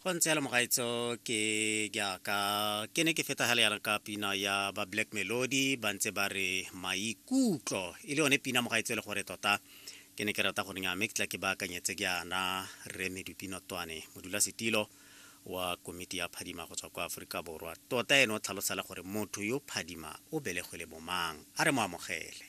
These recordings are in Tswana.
go ntse yalo mogaitso ke jaaka ke ne ke fetagale yana ka pina ya ba black melody ba ntse ba re maikutlo e le yone pina mogaitso e le gore tota ke ne ke rata go nenya mme ke tla ke baakanyetse ke yana re medupino twane modula setilo wa komiti ya phadima go tswa kwa aforika borwa tota ene o tlhalosela gore motho yo phadima o belegwe le bomang a re mo amogele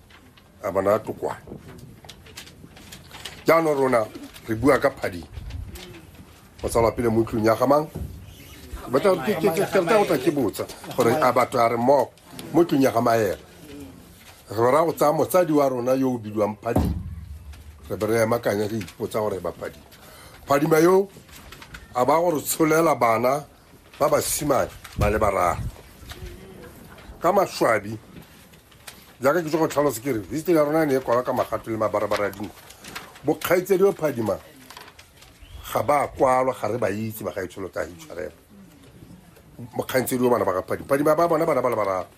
a bona tokwane jaanong rona re bua ka phading go tsalwa pele mo tlong ya gamang batla go tla ke botsa gore a batho a re mmogo mo tlong ya ga maela re ra go tsaya motsadi wa rona yo o bidiwang phadima re be re emakanya re ipotsa gore ba phadima phadima yo a ba gore tsholela bana ba basimane ba le bararo ka maswabi jaaka ke tso go tlhalosa ke re history ya rona ne e kwala ka magato le mabarabara a dinku bokgaitse di phadima ga ba kwalwa ga re ba itse bagaetsholo ka hitshwarela mokgantse di o bana ba ga phadima phadima ba bona bana ba le bararo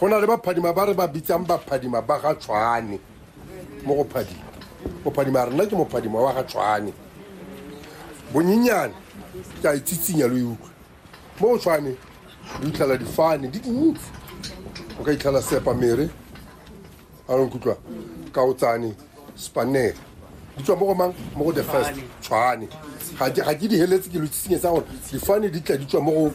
go na le baphadima ba re ba bitsang baphadima ba ga tshwane mo go phadima mophadima rena ke mophadima wa ga tshwane bonyenyane ke a itsitsinya lo e utlwa mo go tshwane lo itlhela difane di dintsi o ka itlhela sepa mere a lo nkutlwa ka o tsane spanere di tswa mo go mang mo go the first tshwane ga ke di heletse ke lo itsitsinyetsa gore difane di tla di tswa mo go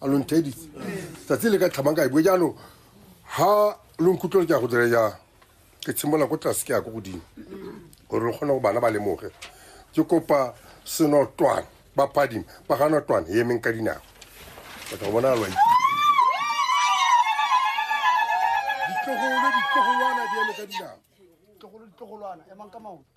a lo ntheeditse tsatsi le ka tlhamang ka e bue jaanong ga lo nkutlwele ke ya go dire jang ke tshimolola ko tlase ke ya ko godimo gore lo kgone go bana ba lemoge ke kopa senotwane ba phadime ba ga notwane e emeng ka dinako o tla go bona lwa ditlogolo ditlogolwana di eme ka dinako ditlogolo ditlogolwana emang ka maoto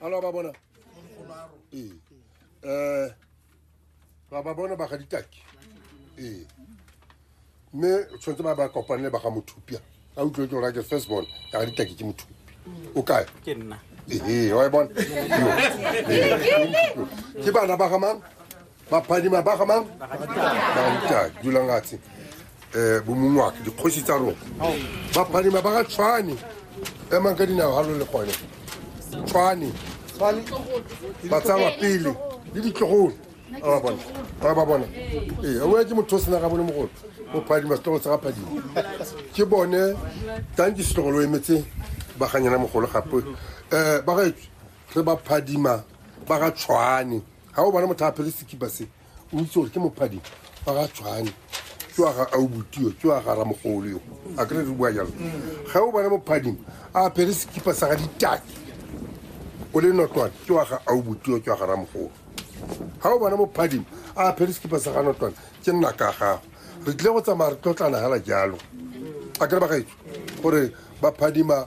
alo ba bona ee um ba ba bona ba ga ditaki ee mme tshwanetse ba ba kopanele ba ga mothupia a utlwe ke orake first born ka ga ditaki ke mothupi o kae ke nna ee wa e bona ke bana ba ga mang baphadima ba ga mang bagatitag dulang atshe um eh, bomong wake dikgosi tsa rona baphadima ba ga tshwane emang ka dinao ga lo le gone tshwane ba tsawa pele le ditlogolo a bona a ba bona ee a boya ke motho o sena ga bone mogolo o phadima setlogolo sa ga phadima ke bone tanke setlogolo o emetse ba ganyana mogolo gape um ba gaetswe re ba phadima ba ga tshwane ga o bane motho a phele sekipa se o itse gore ke mophadi fa ga tshwane ke wa ga aubutio ke wa ga ramogolo yo a kere re bua jalo ga o bane mophading a phele sekipa sa ga ditaki o le notwane ke wa ga aubutio ke wa ga ramogolo ga o bane mophading a phele sekipa sa ga notwane ke nna ka gago re tlile go tsamaya re tlotlana fela jalo a kere ba gaetso gore ba phadima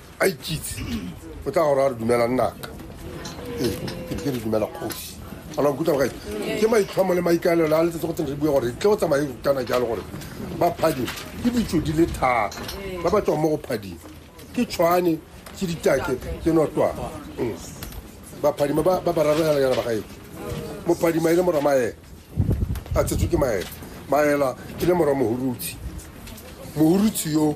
a ikitse o tla gore a re dumela nnaka ee ke ke re dumela kgosi ana nkutlwa gae ke maitlhomo le maikaelelo a letsetse go tsene re bue gore tle o tsamaye kana jalo gore ba phading ke ditso di le thata ba ba tswang mo go phading ke tshwane ke ditake ke notwana Mm. baphadima ba ba bararoganyana ba gaetse mophadima e le mora maela a tshetswe ke maela maela e le mora mohurutshe mohurutshe yo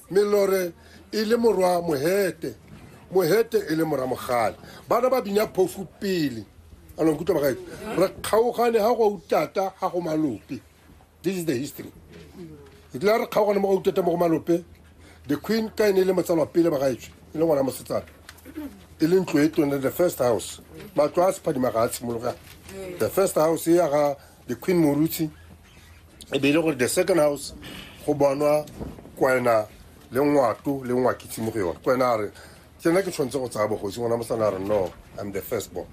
melore e le morwa mohete mohete e le mora mogale bana ba bina phofu pele anong kutlwa bagae re kgaogane ga go utata ga go malope this is the history e tlile re kgaogane mo go utata mo go malope the queen ka e ne e le motsalwa pele bagaetswe e le ngwana mosetsana e le ntlo e tone the first house matlo a sephadima ga a tshimologa the first house e ya ga the queen morutshi e be e le gore the second house go bonwa kwena le ngwato le ngwakitse mo go yone kwena a re ke nna ke tshwanetse go tsaya bogosi ngwana mosana a re no i'm the first born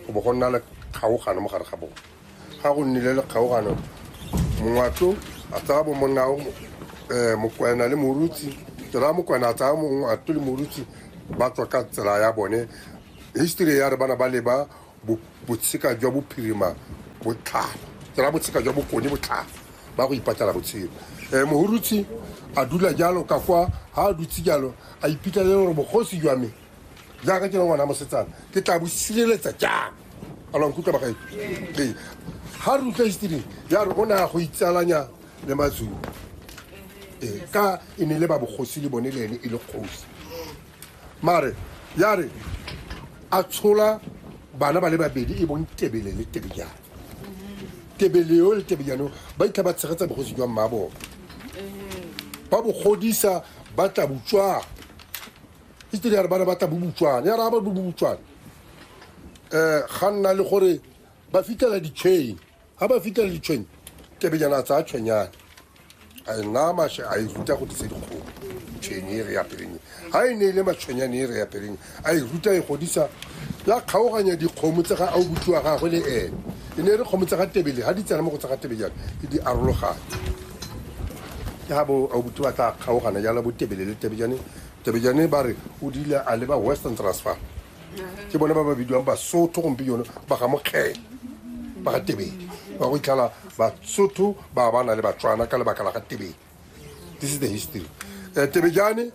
go bo go nna le kgaogano mo gare ga bone ga go nnile le kgaogano mongwato a tsaya bo monna um eh, mokwena le morutsi tsela mokwena a tsaya mongwato le morutsi ba tswa ka tsela ya bone history ya re bana ba leba botsheka jwa bophirima botlhalo tsela botsheka jwa bokone botlhalo ba go ipatlela botshelo um mohurutsi a dula jalo ka kwa ga a dutse jalo a ipitla le gore bogosi jwa me jaaka ke le ngwana mosetsana ke tla bo sireletsa jang a lwa nkutlwa bagae ee ga re utlwa history ya re o ne a go itsalanya le mazulu ee ka e ne le ba bogosi le bone le ene e le kgosi mare ya re a tshola bana ba le babedi e bong tebele le tebejane tebele yo le tebejane ba itlha ba tshegetsa bogosi jwa mma bone ba bogodisa ba tla botswana history ya re bana ba tla bobotswana ya re ga ba bobotswana um ga nna le gore ba fitlhela di-chain ga ba fitlhela ditshwenya kebenyana a tsaya tshwenyane a e naya mashe a e ruta go disa dikgomo tshwenye e re ya peleng ga e ne e le matshwenyane e re ya peleng a e ruta e godisa ya kgaoganya dikgomo tse ga a o botsiwa gagwe le ene e ne e re kgomo tse ga tebele ga di tsena mo go tse ga tebe jalo e di arologane ke ga bo a o botsi ba tla kgaogana jalo bo tebele le tebejane tebejane ba re o dile a leba western transfer ke bone ba ba bidiwang basotho gompieno ba ga mokgele ba ga tebedi ba go itlhala basotho ba ba na le batswana ka lebaka la ga tebedi this is the history um tebejane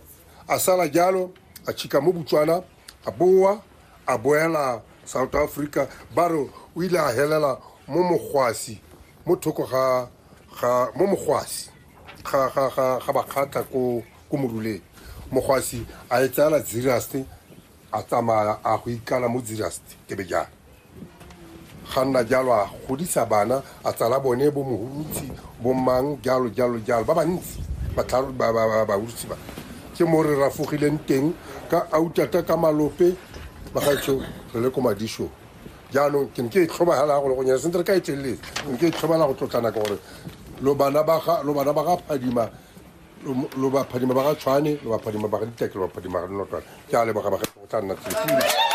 a sala jalo a chika mo botswana a boa a boela south africa ba re o ile a helela mo mogwasi mo thoko ga ga mo mogwasi ga ga ga ga bakgatla ko ko moruleng mogwasi a e tsala zirasti a tsamaya a go ikala mo zirasti ke be jalo ga nna jalo a godisa bana a tsala bone bo mohurutsi bo mang jalo jalo jalo ba bantsi batlharo- ba- ba- ba- bahurutsi ba ke mo re rafogileng teng ka autata ka malope bagaetsho re le ko madishong Jaanong ke ne ke e tlhobagela go le go nyana sentse re ka e teleletse ne ke e tlhobela go tlotlana gore lo bana ba ga lo bana ba ga phadima lo ba phadima ba ga tshwane lo ba phadima ba ga diteke lo ba phadima ga dinotwana ke a leboga ba ga go tla nna tsetse